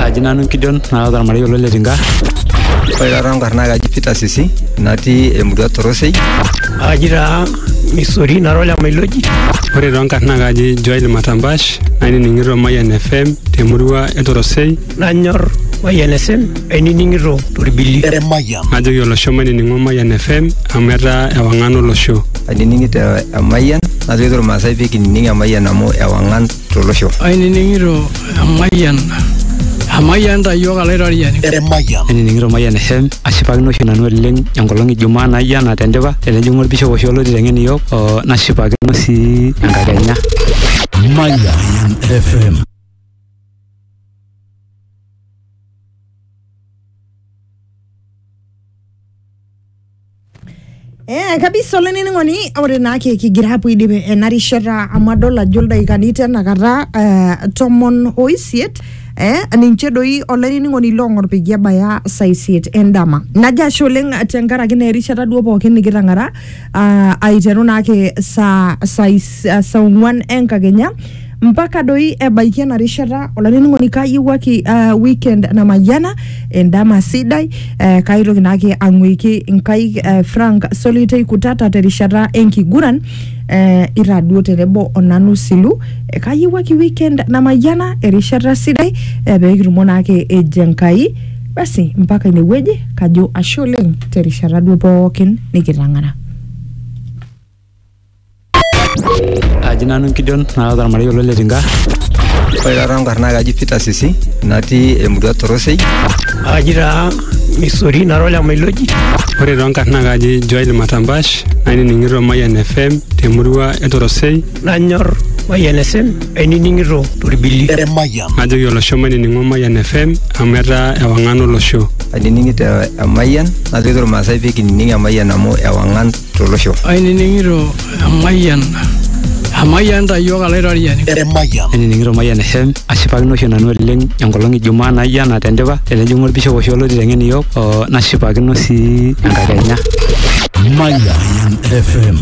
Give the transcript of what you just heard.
Aji nanu Gideon naata ormarei olo le Tinga. Ore taata enkarna kaji Peter Sisi natii emurua Torosei. Aji taa Misori nara ole Mailoji. Ore too nkarn naa kaji Joel Matambash nainining'ito Mayian FM temurua e Torosei. Nanyor Mayian FM ainining'ito torbili. Najoki olosho mainining'o Mayian FM amu etaa ewang'an olosho. Ainining'ito Emayian najoki irmaasai pee kinining Emayian amu ewang'an tolosho. Ainining'ito emayian Amayian ta iyiook alaitoriani. Emayian. Ainining'ito Mayian FM ashipakino oshi nanu oleng enkolong e Jumaa naijo ena tendipa tenejing'u olbishop oshi oloti teng'en iyiook oo nashipakino sii enkakenya. Mayian FM. Eh, kabisa olainining'oni ore naa ki- kigira apuo aidip ena rishata amu adol ajo ildaikani tenakata eh, tomon oisiet eh, ninche doi olainining'oni loong'or peyie ebaya saa isiet endama najo ashe oleng tenkaraki naa erishata duo pookin nikitang'ara ah, aiteru naake saa saa is- saa ong'uan enkakenya mpaka doi ebaiki ena rishata olainining'oni kayiewuaki uh, weekend namayiana endama sidai eh, kaitoki naake ang'uiki inkaik eh, frank solitei kutata terishata enkiguran eh, ira duo tenebo onanu silu eh, kayiewuaki weekend namayiana erishata sidai eh, peekitumo naake eji enkai basi mpaka inewueji kajo ashe oleng terishata duo pookin nikitang'ara Aji nanu Gideon naata ormarei olo Letinka. Ore taata nkarna kaji Peter Sisi natii emurua Torosei. Aji taa Misori nara olemailoti. Ore too nkarna kaji Joel Matambash nainining'ito Mayian FM temurua e Torosei. Nanyor Mayian FM ainining'ito torbili. Emayian. Najoki olosho mainining'o Mayian FM amu etaa ewang'an olosho. Ainining'ito Emayian najoki irmaasai pee kinining Emayian amu ewang'an tolosho. Ainining'ito emayian emayian ta iyiook alaitoriani. Emayian. Ainining'ito Mayian FM ashipakino oshi nanu oleng enkolong e Jumaa naijo ena tendipa tenejing'u olbishop oshi olo aiteng'en iyiook oo nashipakino sii enkakenya. Mayian FM.